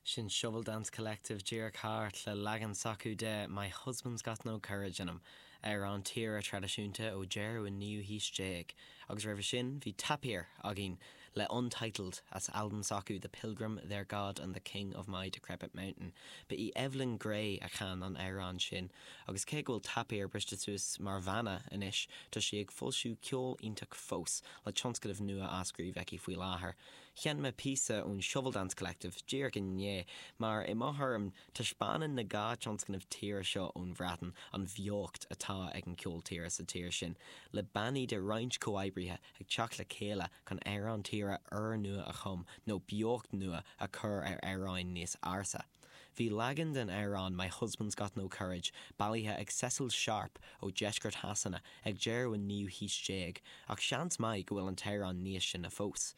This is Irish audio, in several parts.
Sin Shovel Dance Collective díreach thart le leagan s'acu de 'My Husband's Got No Courage In Him', amhrán tíre traidisiúnta ó deireadh an naoú haois déag, agus roimhe sin bhí 'Tapir' againn le 'Untitled' as albam s'acu 'The Pilgrim, Their God and The King Of My Decrepit Mountain'. Ba í Evelyn Gray a chan an amhrán sin. Agus cé go bhfuil Tapir briste suas mar bhanna anois, tá sí ag foilsiú ceol iontach fós, le tionscnamh nua á scríobh aici faoi láthair. Sheinn mé píosa ón Shovel Dance Collective díreach i ndiaidh, mar i mo thuairim, taispeánann na dhá tionscnamh tíre seo ón Bhreatain an bheocht atá ag an cheol tíre sa tír sin, le bannaí de roinnt comhoibrithe ag teacht le chéile chun amhráin tíre úrnua a chum nó beocht nua a chur ar amhráin níos ársa. Bhí leagan den amhrán My Husband's Got No Courage bailithe ag Cecil Sharp ó Dheisceart Shasana ag deireadh an naoú haois déag ach seans maith go bhfuil an t-amhrán níos sine fós.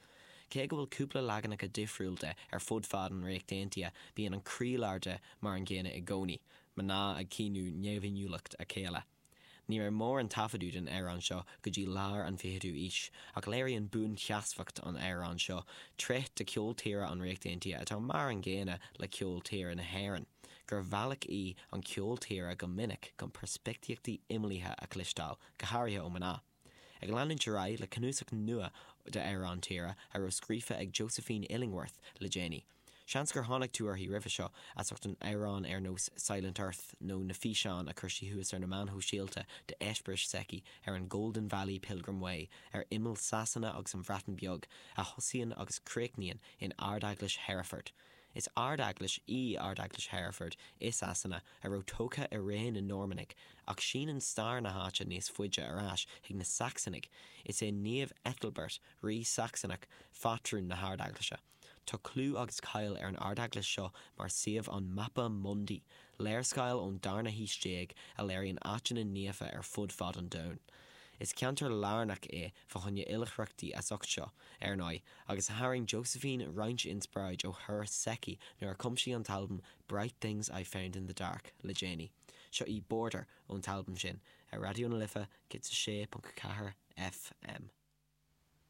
Cé go bhfuil cúpla leaganacha difriúil de ar fud fad an Ríocht Aontaithe bíonn an croílár de mar an gcéanna i gcónaí, mná ag caoineadh neamhinniúlacht a chéile. Ní raibh mórán taifeadadh den amhrán seo go dtí lár an 20ú aois, ach léiríonn buansheasmhacht an amhráin seo tréith de cheol tíre an Ríocht Aontaithe atá mar an gcéanna le ceol tíre na hÉireann, gur bhealach í an ceol tíre go minic chun peirspictíochtaí imeallaithe a chloisteáil, go háirithe ó mná. Ag leanúint ar aghaidh le cnuasach nua d'amhráin tíre a raibh scríofa ag Josephine Illingworth le déanaí. Seans gur tháinig tú uirthi roimhe seo, as ucht amhráin ar nós 'Silent Earth' nó na físeáin a chuir sí suas ar na meáin shóisialta d'eispéiris s'aici ar an Golden Valley Pilgrim Way ar imeall Sasana agus an Bhreatain Bheag, a thosaíonn agus críochnaíonn in Ardeaglais Hereford. Is ardeaglais í Ardeaglais Hereford i Sasana a raibh tógtha i ré na Normannaigh, ach síneann stair na háite níos faide ar ais chuig na Sacsanaigh. Is é Naomh Ethelbert, Rí Sacsanach, pátrún na hardeaglaise. Tá clú agus cáil ar an ardeaglais seo mar suíomh an Mappa Mundi, léarscáil ón darna haois déag a léiríonn áiteanna naofa ar fud fad an domhain. Is ceantar lárnach é. Fá choinne oilithreachtaí as ucht seo, ar ndóigh, agus tharraing Josephine roinnt inspioráid ó thuras s'aici nuair a chum sí an t-albam Bright Things I Found in the Dark le déanaí. Seo í Border ón t-albam sin, ar Raidió na Life 106.4 FM.